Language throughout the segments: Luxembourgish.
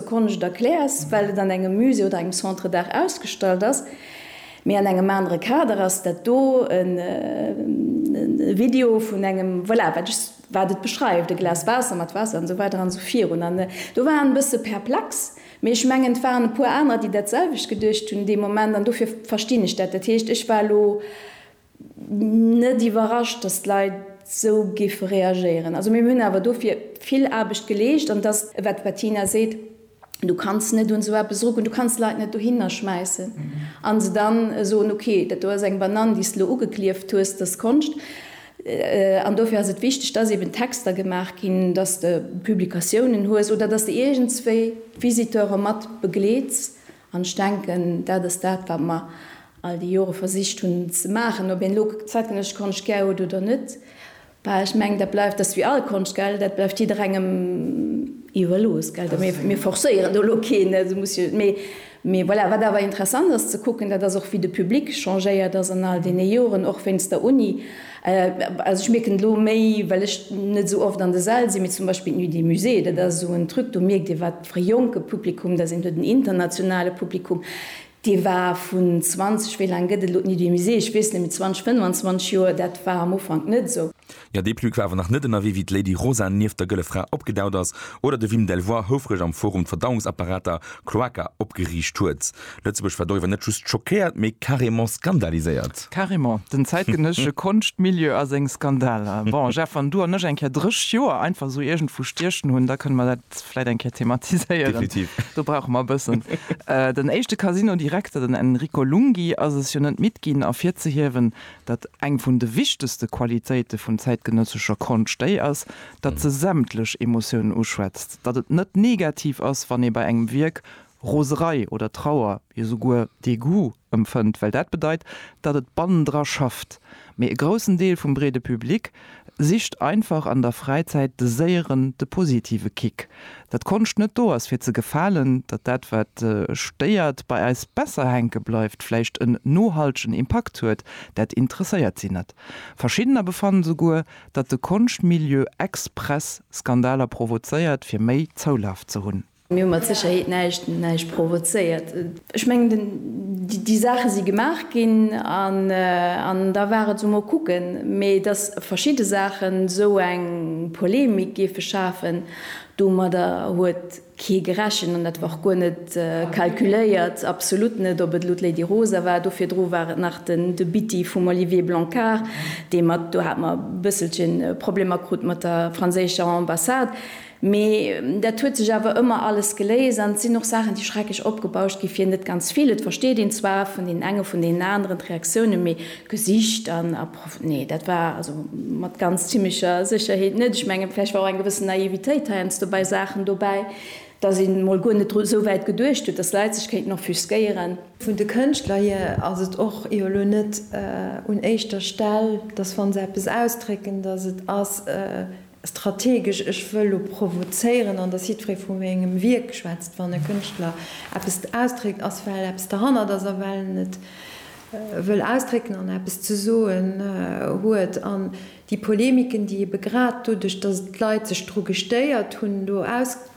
Sekonne, ech erkläers, well et an engem Musée oder engem Centre d'art ausgestallt ass, mee an engem anere Kader ass dat do e Video vun engem, voilà, wat ech, wat et beschreift, e Glas Waasser mat Waasser an esou weider an esou virun. An do war en e bësse perplex, mee ech mengen, et waren e puer anerer, déi dat selwecht geduecht hunn dee Moment, an dofir verstinn ech dat. Dat heescht, ech war elo Net iwwerrascht, dass d'Leit esou géife reagéieren. Also mir hunn awer dofir vill Aarbecht geleescht. An et ass, wat d'Bettina seet, Du kanns net un esou eppes erugoen. Du kanns d'Leit net dohinner schmäissen a se da soen, okay, dat do ass eng Banann, déi s de elo ugeklieft hues, dass Konscht. An dofir ass et wichteg, dass eeben Texter gemaach ginn, dass de Publikatiounen hues oder dass de iergendswéi d'Visiteure mat begleets An ech denken, dat ass dat, wat mer all déi Jore versicht hunn ze maachen. Ob een elo zäitgenëssesch Konscht gär huet oder net, bah, ech mengen, dat bleift, dat ass wéi all Konscht, gell, dat bleift jidderengem iwwerlooss, gell. Mir forcéieren do elo keen, esou muss jo, mee, mee voilà. Wat awer interessant ass ze kucken, dat ass och, wéi de Public changéiert ass an all deene Joren, och wéinst der Uni. Also ech mierken elo méi, well ech net esou oft an de Säll sinn, mee zum Beispill d'Nuit des Musées, dat ass esou en Truc, do mierkt ee, wat, e jonke Publikum, da sinn do den internationale Publikum, dee war vun 20, wéi laang gëtt et elo d'Nuit du Musée, ech weess net méi, 20, 25 Joer, dat war am Ufank net esou. Jo, dee Plug war awer nach net ënnerwee, wéi d'Lady Rosa nieft der Gëlle Fra opgedaucht ass oder de Wim Delvoye houfreg am Forum d'Verdauungsapparater, Cloaca, opgeriicht huet. Lëtzebuerg war doriwwer net just schockéiert, mee carrément skandaliséiert. Carrément, den zäitgenëssesche Konschtmilieu a seng Skandaler. Bon, Jeff, wann du an ech eng Kéier 30 Joer einfach esou iergendwou stiechen hunn, da kënne mer dat vläit eng Kéier thematiséieren. Definitiv. Do brauche mer e bëssen. Den éischte Casino-Direkter, den Enrico Lunghi, ass es jo net midd ginn ervirzehiewen, datt eng vun de wichtegste Qualitéite vun zäitgenëssescher Konscht déi ass, datt se sämtlech Emotiounen uschwätzt, datt et net negativ ass, wann ee bei engem Wierk Roserei oder Trauer, jo souguer Dégoût empfënnt, well dat bedeit, datt et bannendra schafft. Mee e groussen Deel vum breede Public sicht einfach an der Fräizäit de séieren, de positive Kick. Datt d'Konscht net do ass fir ze gefalen, datt dat wat stéiert bei eis besser hänke bleift, vläicht en nohaltegen Impakt huet, dat interesséiert si net. Verschiddener befannen souguer, datt de Konschtmilieu express Skandaler provozéiert fir méi Zoulaf ze hunn. Mir hu mat Sécherheet näischt provozéiert. Ech mengen, déi Saache si gemaach ginn an da war et esou, mol kucken. Mee datt verschidde Saachen esou eng Polemik géife schafen, domadder huet kee gerechent an dat war och guer net calculéiert, absolut net. Ob et elo d'Lady Rosa war, do virdru war et nach den De Bitti vum Olivier Blancard, dee mat, do hat mer e bësselche Problemer krut mat der franséischer Ambassade. Mee dat huet sech awer ëmmer alles geléist an et sinn och Saachen, déi schrecklech opgebauscht gi fir net ganz vill. Et versteet een zwar vun deenen enge vun deenen aneren d'Reaktiounen, mee d'Gesicht an a prof. Nee, dat war also mat ganz zimmlecher Sécherheet net. Ech mengen, vläicht war och eng gewëssen Naivitéit heiansdo bei Saachen dobäi, dass een emol guer net dru esou wäit geduecht huet, dass Leit sech kéinten offusquéieren. Vun de Kënschtler hier ass et och jo elo net un éischter Stell, dass wa se eppes ausdrécken, dass et ass, Strategesch, ech wëll elo provozéieren an dass jiddweree vu mengem Wierk schwätzt, wann e Kënschtler eppes ausdréckt, ass well eppes derhannert ass a well en et wëll ausdrécken an eppes ze soen huet. An déi Polemiken, déi ebe grad doduerch, dass d'Leit sech dru gestéiert hunn, do ausg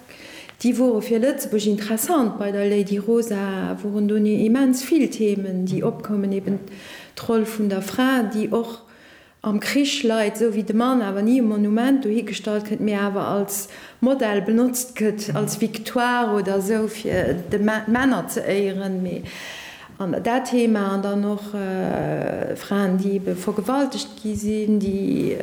déi wore fir Lëtzebuerg interessant. Bei der Lady Rosa woren do immens vill Themen, déi opkoumen, eben d'Roll vun der Fra, déi och Am Krich leit, sou wéi de Mann awer ni um Monument dohi gestallt gëtt, mee awer als Modell benotzt gëtt, als Victoire oder esou, fir d'Männer ze éieren, mee an dat Thema, an dann och Fraen, déi ebe vergewaltegt gi sinn, déi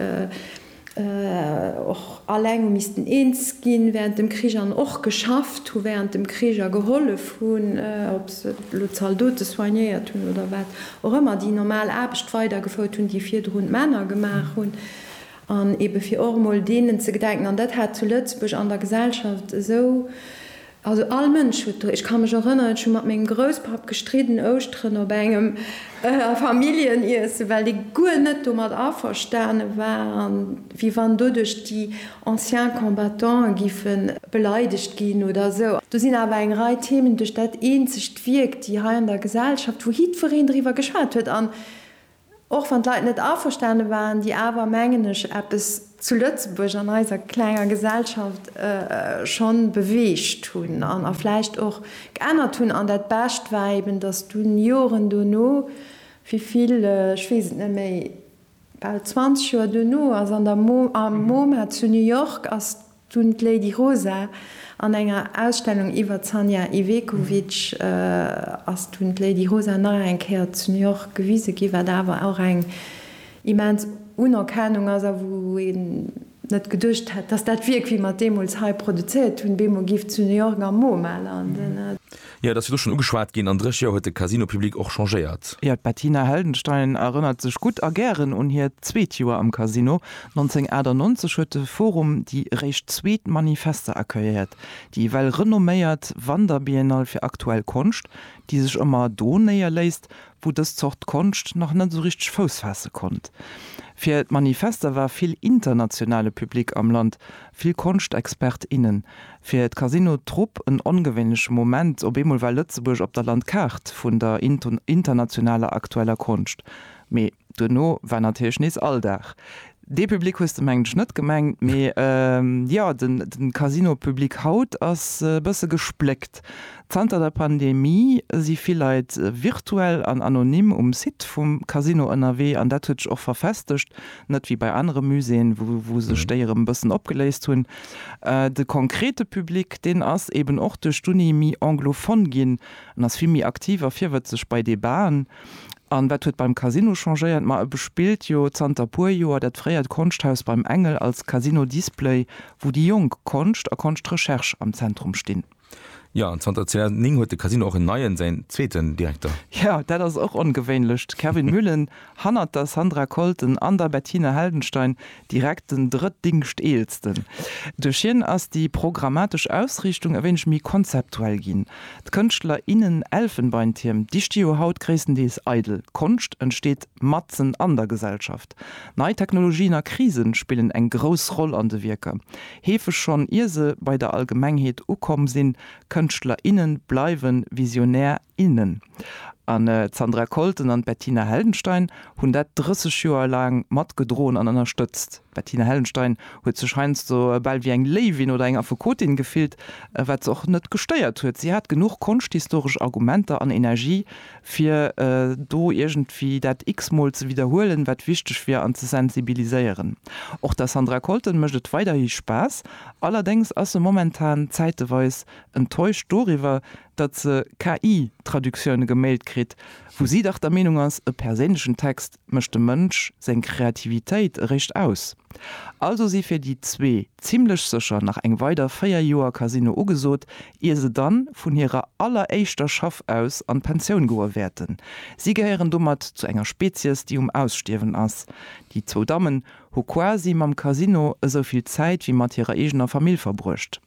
och alleng hu missten eens ginn während dem Krich an och geschafft hu während dem Krich a gehollef hunn, ob se elo Zaldote soignéiert hunn oder wat. och ëmmer déi normal Aarbecht weidergefouert hunn, déi virdrun d'Männer gemaach hunn, an eebe fir och emol deenen ze gedenken. An dat hat zu Lëtzebuerg an der Gesellschaft esou, also all Mënsch huet do, ech ka mech erënneren, ech hu mat mengem Grousspapp gestridden Ouschteren op engem Familljeniessen, well dee guer net domat averstane war, wéi wann doduerch déi anciens combattants giffe beleidegt ginn oder esou. Do sinn awer eng Rei Themen, duerch dat eenzegt d'Wierk, déi hei an der Gesellschaft, wou jiddwereen driwwer geschwat huet an och wann d'Leit net averstane waren, déi awer, mengen ech, eppes zu Lëtzebuerg an eiser klenger Gesellschaft schonn beweegt hunn a vläicht och geännert hunn. An dat Bescht war eben, datt dunn, Joren dono, wéi vill, ech weess et net méi, Bal 20 Joer duerno ass an der MoMA zu New York ass dunn d'Lady Rosa an enger Ausstellung iwwer d'Sanja Ivekovic ass dunn d'Lady Rosa nach eng Kéier zu New York gewise ginn, wat awer och eng immens Unerkennung ass a wou ee net geduecht hätt, dass dat Wierk, wéi mer et deemools hei produzéiert hunn, bemol géif zu New York am MoMA landen. Jo, et ass jo do schonn ugeschwat ginn, an dréch Joer huet de Casino Public och changéiert. Jo, d'Bettina Heldenstein erënnert sech gutt a gären un hiert zweet Joer am Casino. 1998 huet de Forum déi réischt zweet Manifeste accueilliert, déi well renomméiert Wanderbiennale fir aktuell Konscht, déi sech ëmmer do néierléisst, wou dës Zort Konscht nach net esou richteg Fouss faasse konnt. Fir d'Manifester war vill internationale Public am Land, vill Konschtexpert, innen. Fir d'Casino Trupp en ongewéinleche Moment, op eemol war Lëtzebuerg op der Landkaart vun der internationaler aktueller Konscht. Mee duerno war natierlech nees Alldag. Dee Public hues de mengen ech net gemengt, mee jo, de Casino-Public haut ass e bësse gespléckt. Zanter der Pandemie si vill Leit virtuell an anonym um Site vum Casino ënnerwee an dat huet sech och verfestegt, net wéi bei anere Muséeën, wou sech déi erëm e bëssen opgeléist hunn. De konkrete Public, deen ass eeben och duerch d'Uni méi anglophone ginn, en ass vill méi aktiv a virwëtzeg bei Debaten. An wat huet beim Casino changéiert? Ma e bespillt jo zanter puer Joer dat fréiert Konschthaus Beim Engel als Casino Display, wou déi jonk Konscht a Konschtrecherche am Zentrum stinn. Jo, an zanter 2009 huet de Casino och en neien, säin zweeten Direkter. Jo, dat ass och ongewéinlech. D'Kervin Müllen hannert der Sandra Kolten an der Bettina Heldenstein Direkt den Drëtdingschteelsten. Duerch hien ass déi programmatesch Ausriichtung e wéineg méi konzeptuell ginn. D'Kënschtler, innen Elfenbeintierm, déi sti jo haut gréisstendeels eidel. D'Konscht entsteet matzen an der Gesellschaft. Nei Technologien a Krisen spillen eng grouss Roll an de Wierker. Heefeg schonn ier se bei der Allgemengheet ukomm sinn. Kënschtler, innen bleiwen Visionär, innen. An d'Sandra Colton an d'Bettina Heldenstein hunn dat 30 Joer laang mat gedroen an ënnerstëtzt. D'Bettina Heldenstein huet sech heiansdo bal wéi eng Léiwin oder eng Affekotin gefillt, wat se och net gestéiert huet. Si hat genuch konschthistoresch Argumenter an Energie, fir do iergendwéi dat x-mol ze widderhuelen, wat wichteg wier, an ze sensibiliséieren. Och der Sandra Colton mécht et weiderhi Spaass, allerdéngs ass se momentan zäiteweis enttäuscht doriwwer, datt se KI-Traductioune gemailt kritt, wou si dach der Meenung ass, e perséinlechen Text mécht dem Mënsch seng Kreativitéit eréischt aus. Also si fir déi zwee zimmlech sécher nach eng weider 4 Joer Casino ugesot, ier se dann vun hirer alleréischter Schaff aus an d'Pensioun goe wäerten. Si gehéieren domat zu enger Spezies, déi um Ausstierwen ass. Déi zwou Dammen hu quasi mam Casino esou vill Zäit wéi mat hirer eegener Famill verbruecht.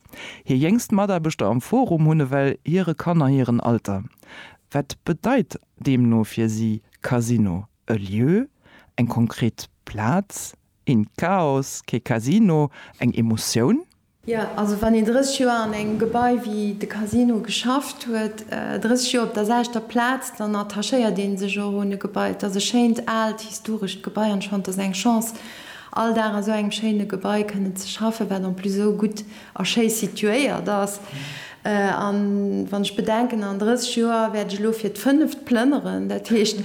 Hir jéngst Mataarbechter am Forum hunn ewell hire Kanner hiren Alter. Wat bedeit deemno fir si Casino? E Lieu, eng konkret Plaz, een Chaos, kee Casino, eng Emotioun? Jo, also wann een 30 Joer an engem Gebai wéi de Casino geschafft huet, 30 Joer op der selchter Plaz, dann attachéiert ee sech och un e Gebai. Et ass e schéint, aalt, historescht Gebai an schonn, et ass eng Chance. all Dag a sou engem schéine Gebai kënnen ze schaffen, wat en plus esou gutt a schéi situéiert ass. A wann ech bedenken, an 30 Joer wäert ech elo fir d'fënneft plënneren, dat heescht,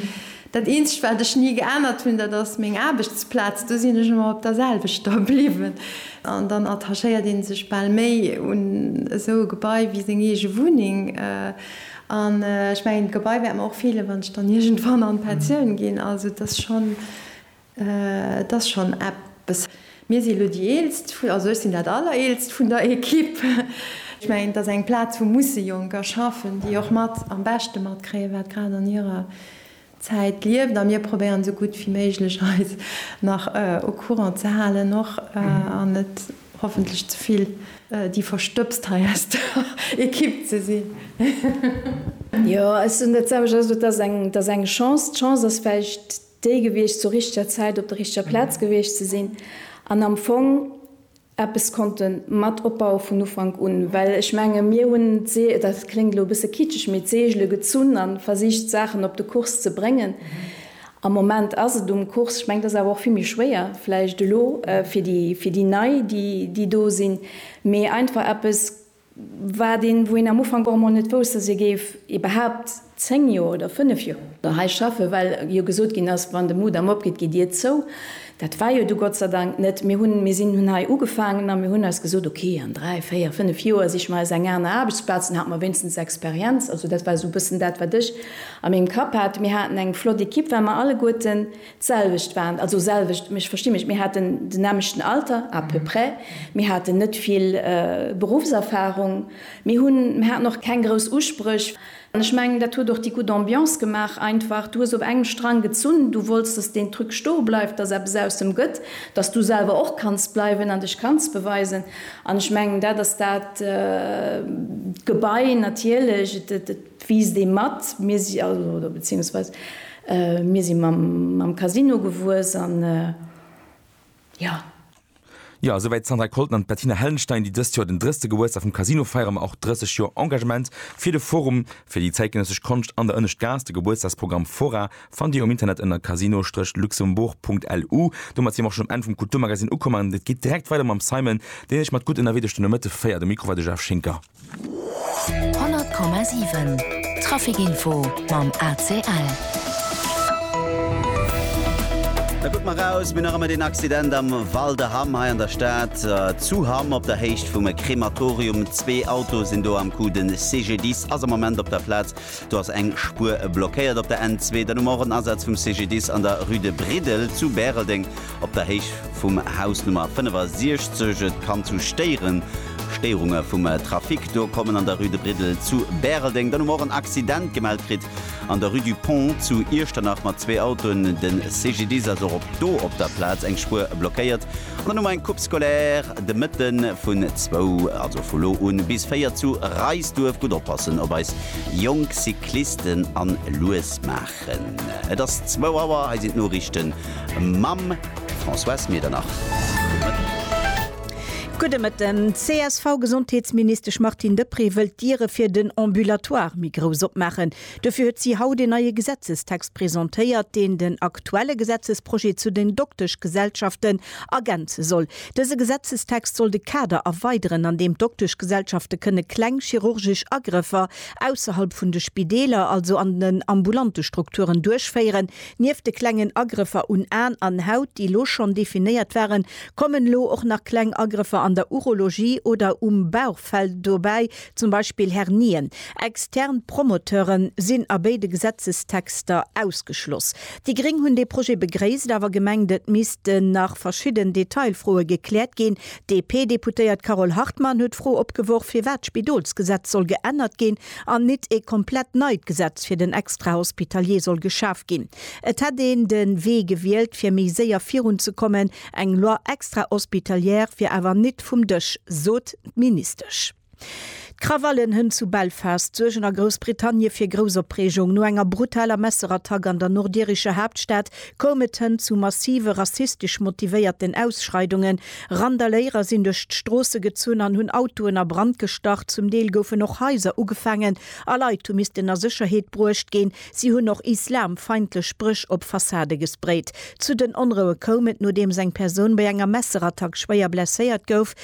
dat eenzegt, wat ech ni geännert hunn, dat ass meng Aarbechtsplaz, do sinn ech ëmmer op der selwechter bliwwen. An dann attachéiert ee sech bal méi un esou e Gebai wéi seng eege Wunneng. An ech mengen, d'Gebai wäert mer och feelen, wann ech dann iergendwann an d'Pensioun ginn. Also et ass schonn. Et ass schonn eppes. Mir si elo déi Eelst, also ech sinn dat Allereelst vun der Equipe. Ech mengen, et ass eng Plaz, wou musse Jonker schaffen, déi och mat am beschte matkréien, wat grad an hirer Zäit lieft. A mir probéieren, esou gutt wéi méiglech eis nach au courant ze halen och an net hoffentlech ze vill déi Verstëbst hei aus der Equipe ze sinn. Jo, ech soen dat selwecht. Also, et ass eng Chance. D'Chance ass vläicht. Déi gewiescht zur richteger Zäit op der richteger Plaz gewiescht ze sinn an am Fong eppes konnte mat opbaue vun Ufank un. Well ech menge mir hunn d'See, dat kléngt elo e bësse kitscheg, mee d'Seegele gezunn a versicht d'Saachen op de Kurs ze bréngen. Am Moment ass et um Kurs, ech mengen et ass awer och vill méi schwéier vläicht elo fir déi Nei déi do sinn, mee einfach eppes, Wat een, wou een am Ufank och emol net wousst, dass ee géif iwwerhaapt zéng Joer oder fënnef Joer hei schaffen, well jo gesot ginn ass, wann de Mudam opgeet, gitt Dir zou. Dat war jo du Gott sei Dank net. Mir hunn, mir sinn, hunn hei ugefaangen a mir hunn eis gesot, okay, an dräi, véier, fënnef Joer siche mer eis eng aner Aarbechtsplaz, dann hat mer wéinstens Experienz. Also dat war esou e bëssen dat, wat ech a mengem Kapp hat. Mir haten eng flott Ekipp, well mer alleguerten D'selwecht waren, also selwecht, mech versti mech, mir haten den nämlechten Alter, à peu près, mir haten net vill Berufserfahrung, mir hunn, mir haten och keng grouss Uspréch. An ech mengen, dat huet och déi gutt Ambiance gemaach, einfach, du hues op engem Strang gezunn, du wollts, dass deen Truc stoe bleift, dass eppes aus dem gëtt, dass du selwer och kanns bleiwen an dech kanns beweisen. An ech mengen, dat ass dat. D'Gebai natierlech, et, et, et. D'Wiss dee mat mir si, oder beziehungsweise mir si mam Casino gewuess an jo. Jo, souwäit d'Sandra Colton an d'Bettina Hellenstein, déi dëst Joer den 30. Gebuertsdag vum Casino feieren, ma och 30 Joer Engagement fir de Forum fir déi zäitgenëssesch Konscht an der Ënneschtgaass. De Gebuertsdagsprogramm Fora fannt Dir um Internet ënner casino-luxembourg.lu. Domat si mer och schonn um Enn vum Kulturmagazine ukomm an et geet direkt weider mam Simon, deen Iech mat Gutt ënnerwee duerch de Nomëtte féiert. Um Mikro war de Jeff Schinker. 100,7 Trafic Info mam ACL. Da kuckt mer raus, mir nach ëmmer deen Accident am Val de Hamm hei an der Stad, zu Hamm op der Héicht vum Krematorium. Zwee Autoe sinn do am Coup. De CGDIS ass am Moment op der Plaz. Do ass eng Spuer blockéiert op der N2. Dann hu mer och en Asaz vum CGDIS an der Rue de Briddel zu Bäreldeng. Op der Héicht vum Haus Nummer 65. Et kann zu Stéieren, Stéierunge vum Trafic, do kommen an der Rue de Briddel zu Bäreldeng. Dann hu mer och en Accident gemellt kritt an der Rue du Pont zu Iechternach mat zwee Autoen. De CGDIS ass och op do op der Plaz. Eng Spuer blockéiert. An dann hu mer eng Coupe scolaire de Mëtte vun zwou, also vu lo un, bis véier zu Reisduerf. Gutt oppassen op eis jonk Cyclisten an lues maachen. Et ass zwou Auer, hei sinn d'Noriichten mam Françoise Medernach. Gudde Mëtten. D'CSV-Gesondheetsministesch Martine Deprez wëllt d'Diere fir den Ambulatoire méi grouss opmaachen. Dofir huet si haut een neie Gesetzestext presentéiert, deen den aktuelle Gesetzesprojet zu den Dokteschgesellschaften ergänze soll. Dëse Gesetzestext soll de Kader erweideren, an deem d'Dokteschgesellschafte kënne kleng chirurgesch Agrëffer ausserhalb vun de Spideeler, also an den ambulante Strukturen, duerchféieren. Nieft de klengen Agrëffer un Aen an Haut, déi elo schonn definéiert waren, kommen elo och nach kleng Agrëffer an der Urologie oder um Bauchfell dobäi, zum Beispill Hernien. Extern Promoteure sinn a béide Gesetzestexter ausgeschloss. Déi Gréng hunn dee Projet begréisst, awer gemengt, et missten nach verschidden Detailfroe gekläert ginn, D'DP-Deputéiert Carole Hartmann huet d'Fro opgeworf, firwat d'Spidolsgesetz soll geännert ginn an nit ee komplett neit Gesetz fir den Extrahospitalier soll geschaf ginn. Et hätt een de Wee gewielt, fir méi séier virunzekommen. Eng Loi extrahospitalière wier awer nit vum Dësch, sot d'Ministesch. D'Krawallen hënt zu Belfast suergen a Groussbritannie fir grouss Opreegung. No enger brutaler Messerattack an der nordirischer Haaptstad koum et hënt zu massive rassistesch motivéierten Ausschreidungen. Randaléierer sinn duerch d'Stroosse gezunn an hunn Autoen a Brand gestach. Zum Deel goufen och Haiser ugefaangen a Leit hu missten a Sécherheet bruecht ginn. Si hunn och islamfeindlech Spréch op Fassade gesprayt. Zu den Onroue koum et, nodeems eng Persoun bei enger Messerattack schwéier blesséiert gouf.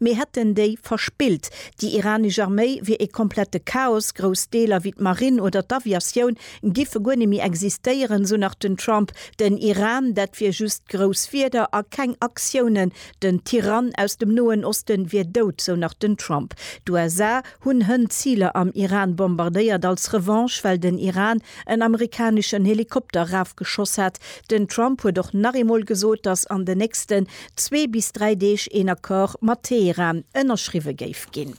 Mir hätten déi verspillt. Déi iranesch Arméi wier ee komplette Chaos, grouss Deeler wéi d'Marinn oder d'Aviatioun giffe guer net méi existéieren, sou nach den Trump. Den Iran, dat wier just grouss Wierder a keng Aktiounen. Den Tyrann aus dem Noen Osten wier dout, sou nach den Trump. D'USA hunn hënt Ziler am Iran bombardéiert als Revanche, well den Iran en amerikaneschen Helikopter erafgeschoss hat. Den Trump huet och nach eemol gesot, datt an den nächsten zwee bis dräi Deeg een Accord mat Teheran ënnerschriwwe géif ginn.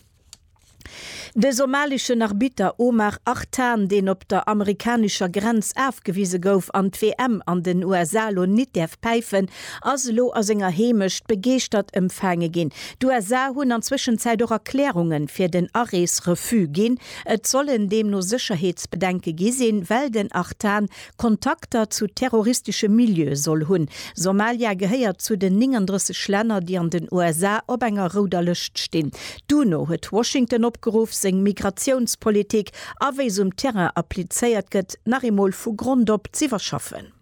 De somaleschen Arbitter Omar Artan, deen op der amerikanescher Grenz afgewise gouf an d'WM an den USA elo nit däerf päifen, ass elo a senger Heemecht begeeschtert ëmfaange ginn. D'USA hunn an Zwëschenzäit och Erklärunge fir den Arees-Refus ginn. Et sollen deemno Sécherheetsbedenke gi sinn, well den Artan Kontakter zu terroristesche Milieue soll hunn. Somalia gehéiert zu den 39 Länner, déi an den USA op enger rouder Lëscht stinn. D'UNO huet Washington opgeruff, seng Migratiounspolitik a wéi se um Terrain applizéiert gëtt, nach eemol vu Grond op z'iwwerschaffen.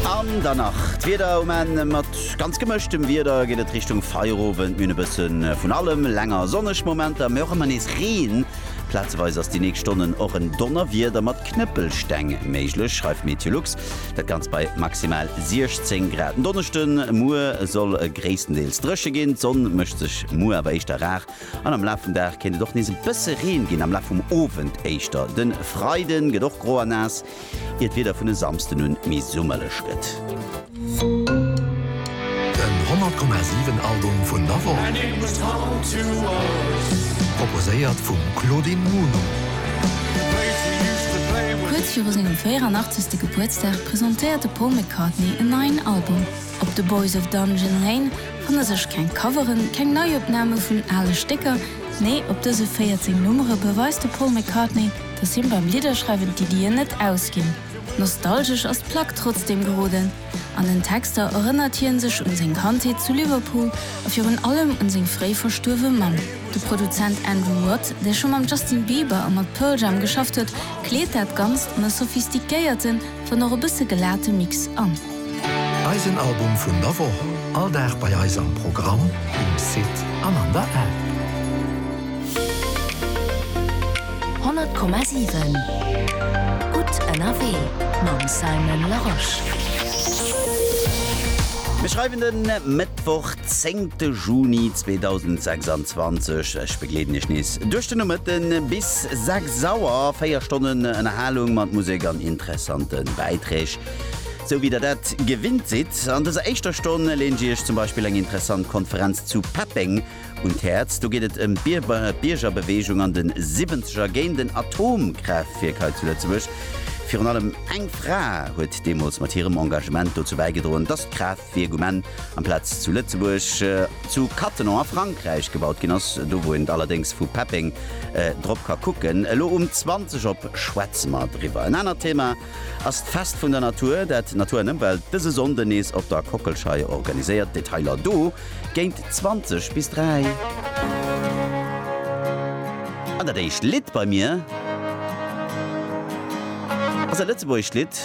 An dann nach d'Wieder um Enn. Mat ganz gemëschtem Wieder geet et Richtung Feierowend, minn e bësse vun allem, länger sonneg Momenter, mee och ëmmer nees Reen. Plazeweis ass déi nächst Stonnen och en Donnerwieder mat Knëppelsteng méiglech, schreift Meteolux. Dat Ganzt bei maximal 16 Grad. Den Donneschde muer soll e gréisstendeels dréche ginn. D'Sonn mécht sech muer awer éischter rar an am Laf vum Dag kéint et och nees e bësse Reen ginn, am Laf vum Owend éischter. De Freide gëtt och gro a naass. ier d'Wieder vun e Samsden un méi summerlech gëtt. Den 100,7 Album vun der Woch. Proposéiert vum Claudine Muno. Kuerz viru sengem 84. Gebuertsdag presentéiert de Paul McCartney en neien Album. Op The Boys of Dungeon Lane fanne sech keng Coveren, keng Neiopname vun ale Stécker, nee, op dëse 14 Nummere beweist de Paul McCartney, dass him beim Lidderschreiwen d'Iddien net ausginn. Nostalgesch ass d'Plack trotzdeem geroden. An den Texter erënnert hien sech un seng Kandheet zu Liverpool a virun allem un seng fréi verstuerwe Mamm. De Produzent Andrew Watt, dee scho mam Justin Bieber a mat Pearl Jam geschafft huet, kleet dat Ganzt an e sophistiquéierten, Dann och e bësse gelate Mix an. Eisen Album vun der Woch, all Dag bei eis am Programm, um Site an an der App. 100,7 Gutt ënnerwee mam Simon Larosche. Mir schreiwen de Mëttwoch. Zéngte Juni 2026, ech begleeden Iech nees duerch de Nomëtte bis 6 Auer. Véier Stonnen Ënnerhalung mat Musek an interessante Bäiträg, sou wéi der dat gewinnt sidd. An dëser éischter Stonn leen ech Iech zum Beispill eng interessant Konferenz zu Peppeng un d'Häerz. Do geet et ëm d'Biergerbeweegung an de Siwwenzeger géint en Atomkraaftwierk hei zu Lëtzebuerg. Virun allem eng Fra huet deemools mat hirem Engagement dozou bäigedroen, dass d'Kraaft. Wéi e Gueman amplaz zu Lëtzebuerg zu Cattenom a Frankräich gebaut ginn ass, do wou een et allerdéngs vu Peppeng drop ka kucken. Elo um 20 op schwätze mer driwwer. En anert Thema ass d'Fest vun der Natur, dat Natur an Ëmwelt dëse Sonnden nees op der Kockelschei organiséiert. Detailer do géint 20 bis 3. An dat éischt Lidd bei mir ass e lëtzebuergescht Lidd.